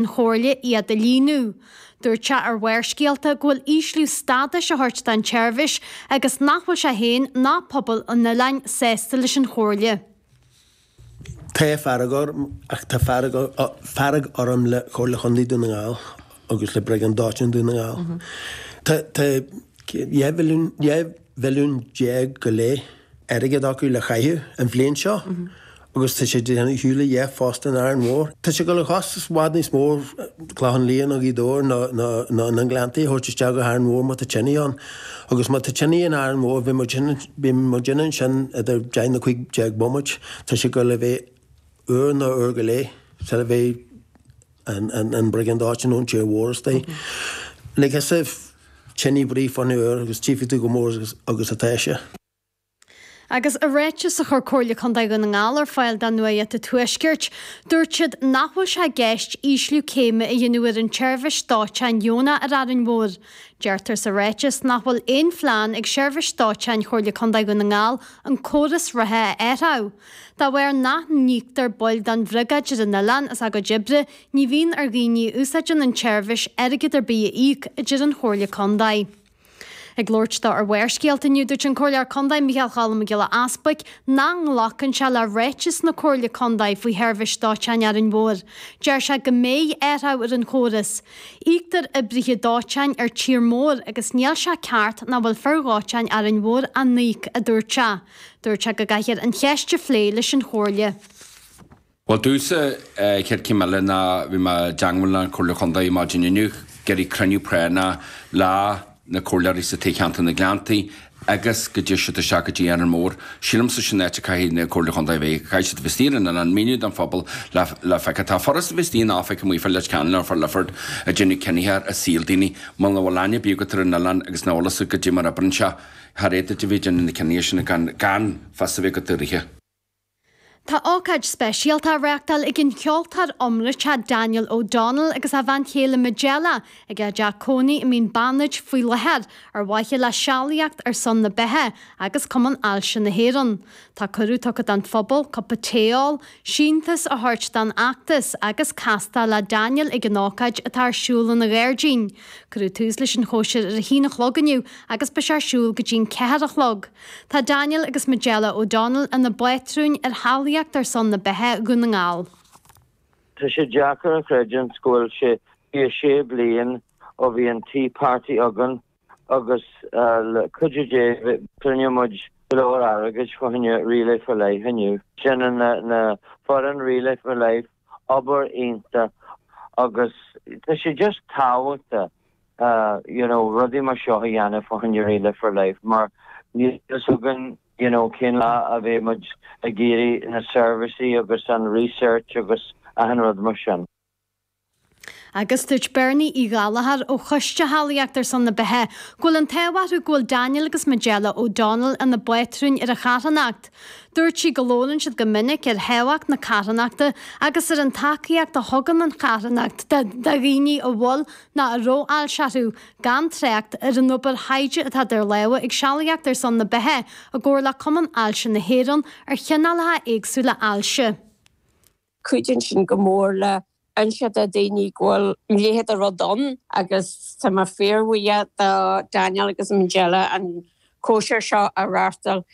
an Chomhairle iad a líniú. Dúirt sé ar Bharrscéalta go bhfuil ísliú stádais á thabhairt don tseirbhís agus nach bhfuil sé féin ná pobal an oileáin sásta leis an Chomhairle. Tá fearg orm, ach tá fearg orm le Comhairle Chontae Dhún na nGall agus le Briogáid Dóiteáin Dhún na nGall. Tá, tá, dhá mhilliún, dhá. mhilliún déag go leith airgead acu le caitheamh an bhliain seo agus tá siad ag déanamh ar shiúl le dheich phost in Árainn Mhór. Tá sé ag dul a chostas i bhfad níos mó Clochán Liath nó Gaoth Dobhair nó na Gleanntaí a thabhairt isteach go hÁrainn Mhór má tá tine ann. Agus má tá tine in Árainn Mhór beidh, beidh muidinne ansin idir deich nó cúig déag bomaite. Tá sé ag dul a bheith uair nó uair go leith sula mbeidh. an briogáid dóiteáin ón tír mhór istigh. Lig thusa tine ar bith fá choinne uair agus tchífidh tú chomh mór agus atá sé. Agus i ráiteas a chuir Comhairle Contae Dhún na nGall ar fáil do Nuacht an Tuaiscirt, dúirt siad nach bhfuil sé i gceist ísliú céime a dhéanamh ar an tseirbhís dóiteáin dheonach ar Árainn Mhór. Deirtear sa ráiteas nach bhfuil aon phlean ag Seirbhís Dóiteáin Chomhairle Contae Dhún na nGall an córas reatha a athrú, De bharr nach n-íoctar baill den Bhriogáid ar an oileán as a gcuid oibre, ní bhíonn ar dhaoine a úsáideann an tseirbhís airgead ar bith a íoc, a deir an Chomhairle Contae. Ag labhairt dó ar Bharrscéalta inniu, dúirt an Comhairleoir Contae Micheál Choilm Mac Giolla Easbuig nach nglacann sé le ráiteas na Comhairle Contae faoi sheirbhís dóiteáin Árainn Mhór. Deir sé go mbeidh athrú ar an chóras. Íoctar oibrithe dóiteáin ar tír mór agus níl sé ceart nach bhfuil fir dhóiteáin Árainn Mhór á n-íoc, a dúirt sé. Dúirt sé go gcaithfear an cheist a phlé leis an Chomhairle. Bhuel, domhsa, an chéad chéim eile ná bhí mé i dteagmháil leis an Chomhairle Chondae maidin inniu. Ag iarraidh cruinniú práinneach leis na comhairleoirí as Toghcheantar na nGleanntach agus go dté siad isteach go dtí Árainn Mhór. Sílimse sin an áit a gcaithfidh an Chomhairle Chondae a bheith. Caithfidh siad a bheith istigh ar an oileán ag míniú don phobal le le feiceáil. Tá sé furast, bhfuil a fhios agat, daoine a bheith amuigh fá Leitir Ceanainn, Leifear, Lifford ag déanamh cinneadh ar shaol daoine. Muna bhfuil aithne ar bith agat ar an oileán agus ná eolas agat goidé mar a oibríonn sé. char fhéidir duit a bheith ag déanamh na cinntí sin gan fios a bheith agat orthu. Tá ócáid speisialta á reáchtáil ag an cheoltóir iomráite Daniel O'Donnell agus a bhean chéile Majella ag a dteach cónaí i Mín Beannaid faoi láthair ar mhaithe le sealaíocht ar son na beatha agus Cumann Ailse na hÉireann. Tá cuireadh tugtha don phobal cupa tae a ól, síntiús a thabhairt don fheachtas agus castáil le Daniel ag an ócáid atá ar siúl ina ghairdín. Cuireadh tús leis an chóisir ar a haon a chlog inniu agus beidh sé ar siúl go dtí'n ceathair a chlog. Tá Daniel agus Majella O'Donnell ina bpátrúin ar Shealaíocht ar son na Beatha Dhún na nGall. Tá sé deacair a chreidiúint go bhfuil sé 26 bliain ó bhí an Tea Party againn agus le cuidiú Dé cruinneoidh muid go leor airgid fá choinne Relay for Life inniu. Déanann na foireann Relay for Life obair iontach agus tá sé just tábhachtach you know rudaí mar seo a dhéanamh fá choinne Relay for Life mar níl fhios againn you know cén lá a bheidh muid ag iarraidh na seirbhísí agus an research agus achan rud mar sin. Agus dúirt Bernie Uí Ghallchóir ó Choiste Shealaíocht ar son na Beatha go bhfuil an t-ádh orthu go bhfuil Daniel agus Majella O'Donnell ina bpátrúin ar an charthanacht. Dúirt sí go labhrann siad go minic ar thábhacht na carthanachta agus ar an tacaíocht a thugann an charthanacht do dhaoine a bhfuil nó a raibh ailse orthu, gan trácht ar an obair thaighde atá idir lámha ag Sealaíocht ar son na Beatha i gcomhar le Cumann Ailse na hÉireann ar chineálacha éagsúla ailse. Cuidíonn sin go mór le inse do dhaoine go bhfuil a leithéid de rud ann agus tá mé fíorbhuíoch do Daniel agus Majella an cóisir seo a reáchtáil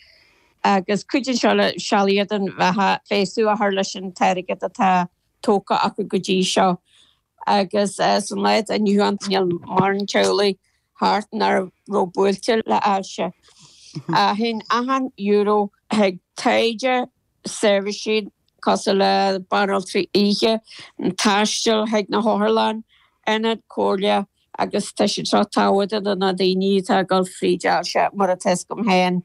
agus cuidíonn seo le sealaíocht don bheatha feabhsú a chur leis an t-airgead atá tógtha acu go dtí seo agus san lá atá inniu ann níl mórán teaghlaigh thart nach raibh buailte le ailse. Théann achan euro chuig taighde seirbhísí cosúil le banaltraí oíche, taisteal chuig na hotharlanna, ionaid comhairle agus tá siad seo tábhachtach do na daoine atá ag dul fríd ailse, mar atá a fhios agam féin.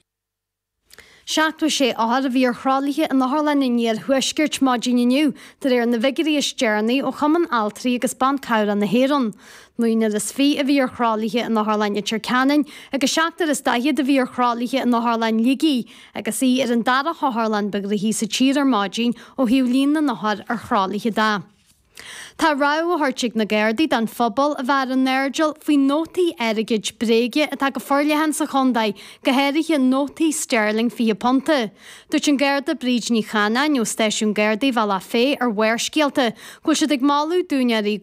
76 othar a bhí ar thralaithe in otharlanna an Iarthuaiscirt maidin inniu, de réir na bhfigiúirí is deireanaí ó Chumann Altraí agus Ban Cabhrach na hÉireann. Naonúr is fiche a bhí ar thralaithe in Otharlann Leitir Ceanainn agus seachtar is daichead a bhí ar thralaithe in Otharlann Shligigh, Agus í ar an dara hotharlann ba ghnóthaí sa tír ar maidin ó thaobh líon na n-othar ar thralaithe de, tá rabhadh á thabhairt ag na Gardaí don phobal a bheith ar a n-airdeall faoi nótaí airgid bréige atá go forleathan sa chontae, go háirithe nótaí steirling fiche punta. Dúirt an Garda Bríd Ní Chanáin ó Stáisiún Gardaí Bhealach Féich ar Bharrscéalta go bhfuil siad ag moladh d'úinéirí